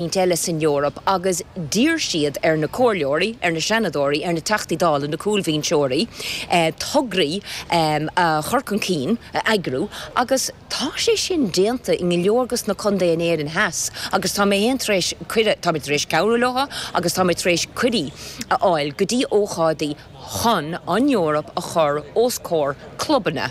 roinnt eile san Eoraip agus d'iarr siad ar na Comhairleoirí, ar na Seanadóirí, ar na Teachtaí Dála, na cúlbhinseoirí, tograí a chur chun cinn, a eagrú agus tá sé sin déanta i go leor de na contaetha in Éirinn theas agus tá mé féin tar éis cuireadh, táimid tar éis cabhrú leo agus táimid tar éis cuirí a fháil go dtí ócáidí chun an Eoraip a chur os comhair clubanna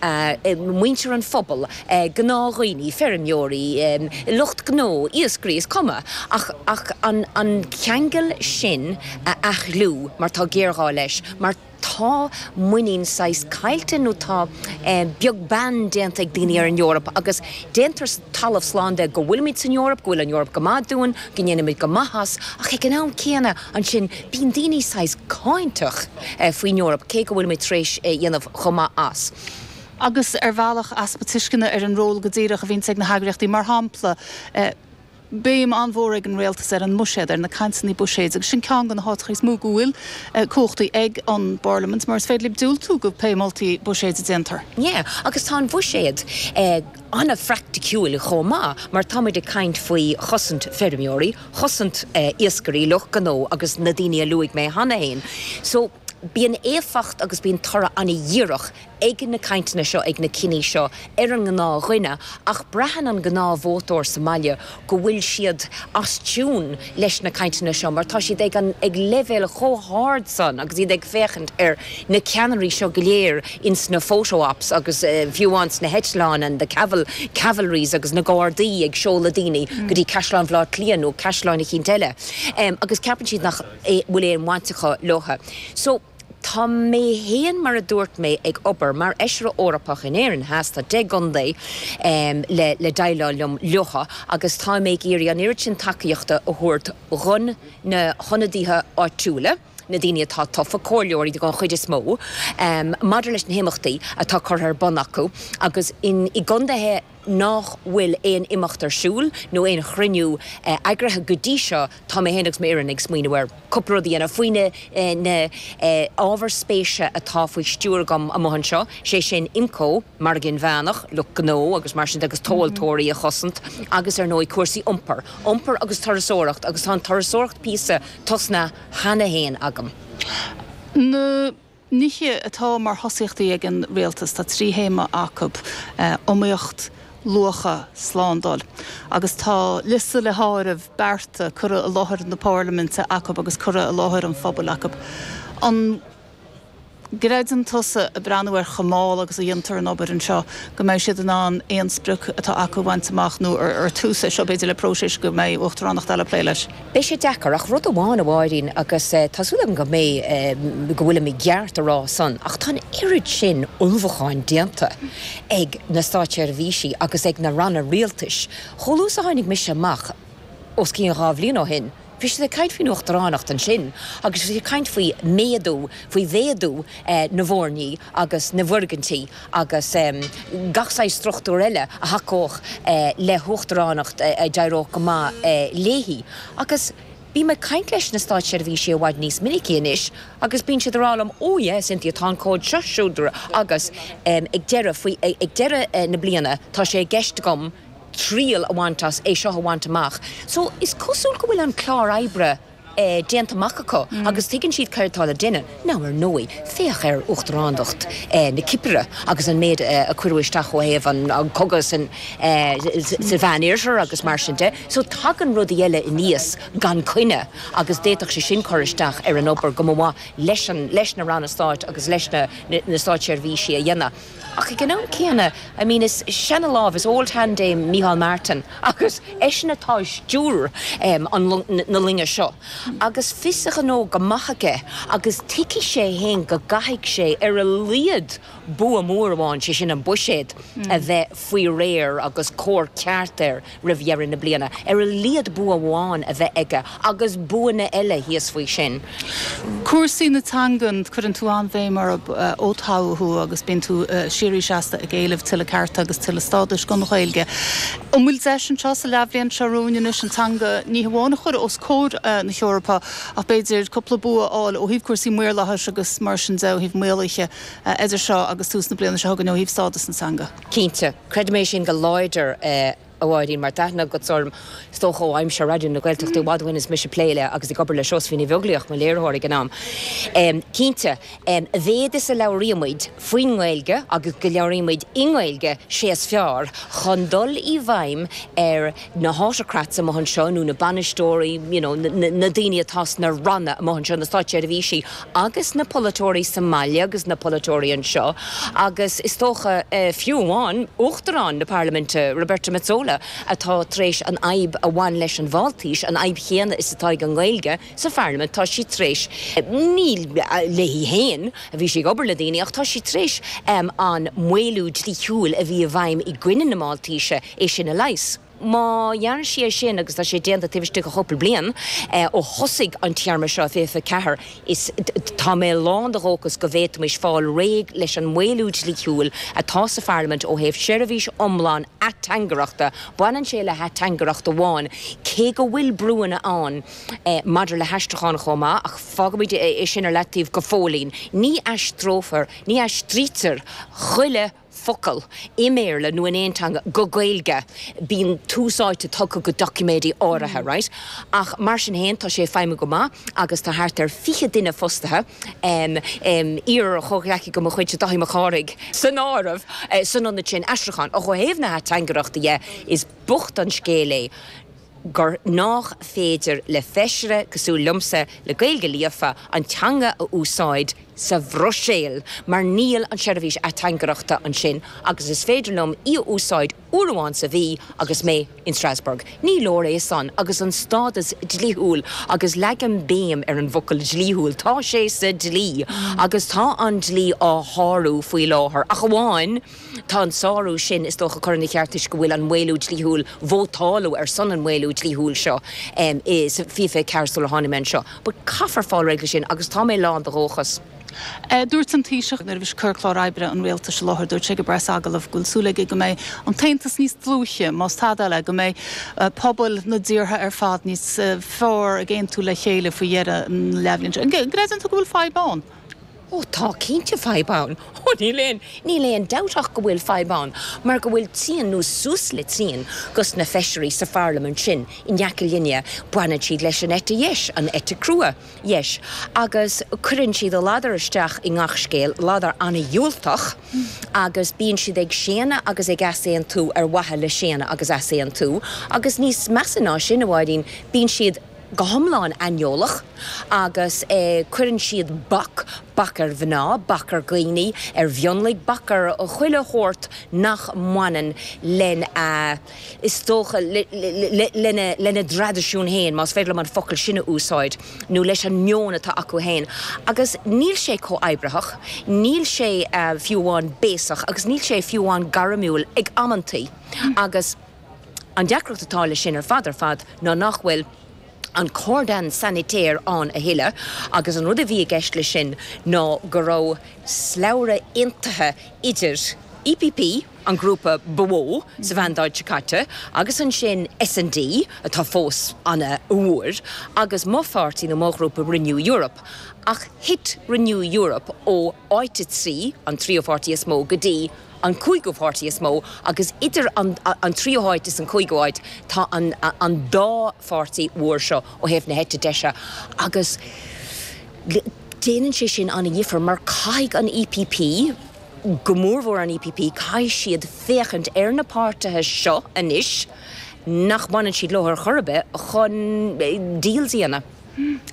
muintir an phobail, gnáthdhaoine, feirmeoirí, lucht gnó, iascairí, is cuma, ach an ceangal sin a athshlánú mar tá géarghá leis, mar tá muinín saghas caillte nó tá beag beann déanta ag daoine ar an Eoraip agus déantar talamh slán de go bhfuilimid san Eoraip, go bhfuil an Eoraip go maith dúinn, go ndéanaimid go maith as, ach ag an am céanna. Ansin, bíonn daoine saghas cáinteach faoin Eoraip, cé go bhfuil muid tar éis a dhéanamh chomh maith as. Agus ar bhealach, easpa tuisceana ar an ról go díreach a bhíonn ag na heagraíochtaí. Mar shampla, béim an-mhór ag an rialtas ar an mbuiséad, ar na cainteanna buiséid, agus sin ceann de na háiteacha is mó go bhfuil cumhachtaí ag an bParlaimint, mar is féidir libh diúltú do pé moltaí buiséid a déantar. Agus tá an bhuiséad. an-phraiticiúil chomh maith mar tá muid ag caint faoi chosaint feirmeoirí, chosaint iascairí, lucht gnó agus na daoine a luaigh mé cheana féin. So, bíonn éifeacht agus bíonn toradh an-dhíreach ag na cainteanna seo, ag na cinntí seo ar an ngnáthdhuine ach braitheann an gnáthvótóir sa mbaile go bhfuil siad as tiún leis na cainteanna seo mar tá siad ag an ag leibhéal chomh hard san agus iad ag féachaint ar na ceannairí seo go léir ins na photo ops agus fiú ins na heitleáin and the caval cavalries agus na gardaí ag seoladh daoine go dtí Caisleán Bhaile Átha Cliath nó caisleáin eicínt eile agus ceapann siad nach bhfuil aon bhaint acu leotha so Tá mé féin, mar a dúirt mé, ag obair mar Fheisire Eorpach in Éirinn Theas, tá deich gcontae le déileáil liom leo agus táim ag iarraidh an oiread sin tacaíochta a thabhairt do na hionadaithe áitiúla, na daoine atá tofa, comhairleoirí den chuid is mó, maidir leis na himeachtaí atá curtha ar bun acu agus i gcontaetha. nach bhfuil aon imeacht ar siúl nó aon chruinniú eagraithe go dtí seo, tá mé féin agus m'fhoireann ag smaoineamh ar chúpla rud a dhéanamh faoi na hábhair spéise atá faoi stiúir agam amuigh anseo, sé sin Imco, Margadh Inmheánach, lucht gnó agus mar sin de agus tomhaltóirí a chosaint agus ar ndóigh cúrsaí iompair, iompar agus turasóireacht agus tá an turasóireacht píosa tosnaithe cheana féin agam. nithe atá mar thosaíochtaí ag an Rialtas. Tá trí théama acu, iomaíocht, luacha, slándáil, agus tá liosta le háireamh bearta curtha i láthair na Parlaiminte acu agus curtha i láthair an phobail acu. An gcreideann tusa, ag breathnú ar chomh mall agus a dhéantar an obair anseo, go mbeidh siad in ann aon sprioc atá acu a bhaint amach nó ar tús é seo b'fhéidir le próiseas go mbeidh Uachtaránacht eile ag plé leis? Beidh sé deacair, ach rud amháin a Mháirín, agus tá súil agam go mbeidh, go bhfuilim i gceart a rá san, ach tá an oiread sin ullmhúcháin déanta ag na státseirbhísigh agus ag na ranna rialtais, chomh luath is a tháinig mise amach os cionn dhá bhliain ó shin, bhí siad ag caint faoin uachtaránacht ansin agus bhí siad ag caint faoi méadú, faoi mhéadú na bhfoirní agus na bhfoirgintí. agus gach saghas struchtúr eile a thacódh le huachtaránacht a d'éireodh go maith léi, agus bím ag caint leis na státseirbhísigh i bhfad níos minice anois agus bíonn siad ag rá liom, oh yeah, Cynthia, tá an comhad seo, siúd, agus ag deireadh, faoi, ag deireadh na bliana, tá sé i gceist agam triail a bhaint as, é seo a bhaint amach. So is cosúil go bhfuil an clár oibre. déanta amach acu agus tuigeann siad céard atá le déanamh. Now, ar ndóigh, féach ar Uachtaránacht na Cipire agus an méid a cuireadh isteach ó thaobh an cogadh insa Mheánoirthear agus mar sin de. So, tagann rudaí eile aníos gan coinne agus d'fhéadfadh sé sin cur isteach ar an obair go mba mhaith leis an leis na Ranna Stáit agus leis na na Státseirbhísigh a dhéanamh. Ach ag an am céanna, I mean, is seana lámh, is old hand é Micheál Martin agus eisean atá i stiúir na loinge seo agus fios a ghnó go maith aige agus tuigfidh sé fhéin go gcaithfidh sé ar a laghad bua mór amháin, sé sin an buiséad, a bheith faoi réir agus cóir ceart air roimh dheireadh na bliana, ar a laghad bua amháin a bheith aige agus buanna eile thíos faoi sin. Cúrsaí na teangan, cuireann tú an-bhéim orthu ó toghadh thú agus bíonn tú síoraí seasta ag éileamh tuilleadh cearta agus tuilleadh stádais don Ghaeilge. An bhfuil deis anseo sa leathbhliain seo romhainn anois an teanga ní hamháin a chur os comhair na hEorpa ach b'fhéidir cúpla bua a fháil ó thaobh cúrsaí maorlathais agus mar sin de, ó thaobh maolaithe idir seo agus tús na bliana seo chugainn ó thaobh stádas na teanga? Cinnte. Creidim é sin go láidir, a Mháirín, mar tá aithne agatsa orm, is dócha, ó aimsir Raidió na Gaeltachta i bhfad uainn is mise ag plé le agus ag obair le Seosaimhín Ní Bheaglaoich, mo léiritheoir ag an am. Cinnte, a mhéad is a labhraímid faoin nGaeilge agus go labhraímid i nGaeilge, sé is fearr chun dul i bhfeidhm ar. na hautocrats amuigh anseo nó na bainisteoirí, you know, na daoine atá sna ranna amuigh anseo, na státseirbhísigh agus na polaiteoirí sa mbaile agus na polaiteoirí anseo agus is dócha fiú amháin Uachtarán na Parlaiminte, Roberta Metsola, atá tar éis an fhadhb a bhain leis an Mháltais, an fhadhb chéanna is atá ag an nGaeilge. sa Pharlaimint, tá sé tar éis, ní léi féin a bhí sé ag obair le daoine, ach tá sé tar éis an maolú dlíthiúil a bhí i bhfeidhm i gcoinne na Maltaise, é sin a leigheas. Má dhearna sé é sin, agus tá sé déanta taobh istigh de chúpla bliain ó thosaigh an téarma seo, 24, is tá mé lán de dhóchas go bhféadfaimis fáil réidh leis an maolú dlíthiúil atá sa Pharlaimint ó thaobh seirbhís iomlán ateangaireachta. Baineann sé le hateangaireacht amháin, cé go bhfuil brúanna ann, maidir le haistriúchán chomh maith, ach fágaimid é sin ar leataobh go fóillín. Ní aistreofar, ní aistrítear chuile focal i mBéarla nó in aon teanga go Gaeilge, bíonn tús áite tugtha go doiciméidí áirithe, right? Ach mar sin féin, tá sé ag feidhmiú go maith agus tá thart ar 20 duine fostaithe, iar-chomhghleacaí de mo chuidse, Dáithí Mac Cárthaigh, san áireamh, san ionad sin aistriúcháin. Ó thaobh na hateangaireachta dhe, is bocht an scéal é. gur nách féidir le Feisire cosúil liomsa le Gaeilge líofa an teanga a úsáid sa Bhruiséil mar níl an seirbhís ateangaireachta ansin agus is féidir liom í a úsáid uair amháin sa mhí agus mé in Strasbourg. Ní leor é san agus an stádas dlíthiúil, agus leagaim béim ar an bhfocal dlíthiúil, tá sé sa dlí agus tá an dlí á shárú faoi láthair ach amháin, Tá an sárú sin, is dócha, curtha ina cheart toisc go bhfuil an maolú dlíthiúil, vótáladh ar son an maolú dlíthiúil seo i 2024 sular tháinig mé anseo. But caithfear fáil réidh leis sin agus tá mé lán de dhóchas. Dúirt an Taoiseach nuair a bhí cur chlár oibre an Rialtais i láthair, dúirt sé ag an bpreas agallamh go bhfuil súil aige go mbeidh an tAontas níos dlúithe, más tada eile, go mbeidh pobail na dtíortha ar fad níos fearr ag aontú le chéile faoi dheireadh an leathbhliain seo. An gcreideann tú go bhfuil fadhb ann? Ó, tá cinnte fadhb ann. Ó, níl aon, níl aon dabht ach go bhfuil fadhb ann mar go bhfuil trian nó suas le trian dhos na feisirí sa Pharlaimint sin in aice linne, baineann siad leis an eite dheis, an eite crua dheis, agus cuireann siad a ladar isteach i ngach scéal, ladar an-dhiúltach, agus bíonn siad ag séanadh agus ag easaontú ar mhaithe le séanadh agus easaontú agus níos measa ná sin, a Mháirín, bíonn siad. go hiomlán aineolach agus cuireann siad bac, bac ar mhná, bac ar dhaoine, ar mhionlaigh, bac ar chuile shórt nach mbaineann lena, is dócha, lena dtraidisiún féin, más féidir liom an focal sin a úsáid, nó leis an meon atá acu féin. Agus níl sé comhoibritheach, níl sé fiú amháin béasach agus níl sé fiú amháin gairmiúil ag amantaí agus, An deacracht atá leis sin ar fad ar fad ná nach bhfuil an cordon sanitaire ann a thuilleadh agus an rud a bhí i gceist leis sin ná go raibh slabhra aontaithe idir EPP, an grúpa ba mhó sa mhandáid seo caite, agus ansin S&D, atá fós an-mhór, agus mo pháirtí nó mo ghrúpa, Renew Europe. Ach thit Renew Europe ó áit a trí, an tríú páirtí is mó, go dtí. an cúigiú páirtí is mó agus idir an tríú háit is an cúigiú háit tá an an dá pháirtí mhór seo ó thaobh na heite deise agus déanann sé sin an-dhifear mar caithfidh an EPP, go mór mhór an EPP, caithfidh siad féachaint ar na páirtithe seo anois nach mbaineann siad leo ar chor ar bith chun deal a dhéanamh.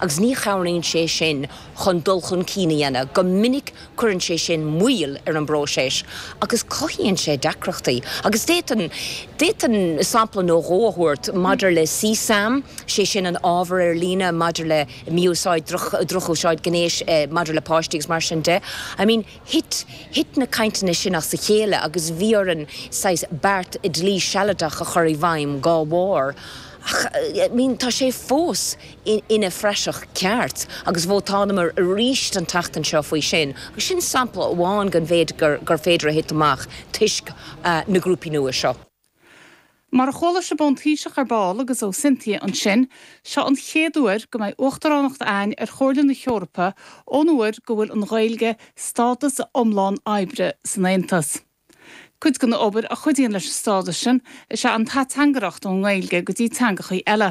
agus ní chabhraíonn sé sin chun dul chun cinn a dhéanamh. Go minic cuireann sé sin moill ar an bpróiseas agus cothaíonn sé deacrachtaí agus d'fhéadfainn, d'fhéadfainn sampla nó dhó a thabhairt maidir le CSAM, sé sin an ábhar ar líne maidir le mí-úsáid, droch, drochúsáid gnéis maidir le páistí agus mar sin de. I mean thit, thit na cainteanna sin as a chéile agus bhí orainn saghas beart dlí sealadach a chur i bhfeidhm dá bharr. Ach I mean tá sé fós ina phraiseach ceart agus vótálamair arís an tseachtain seo faoi sin agus sin sampla amháin den mhéid gur féidir a thitim amach toisc na grúpaí nua seo. Mar a chuala sibh ón Taoiseach ar ball agus ó Cynthia ansin, seo an chéad uair go mbeidh uachtaránacht againn ar Chomhairle na hEorpa ón uair go bhfuair an Ghaeilge stádas iomlán oibre san Aontas. Cuid den obair a chuidíonn leis an stádas sin is ea an ateangaireacht ón nGaeilge go dtí teangachaí eile.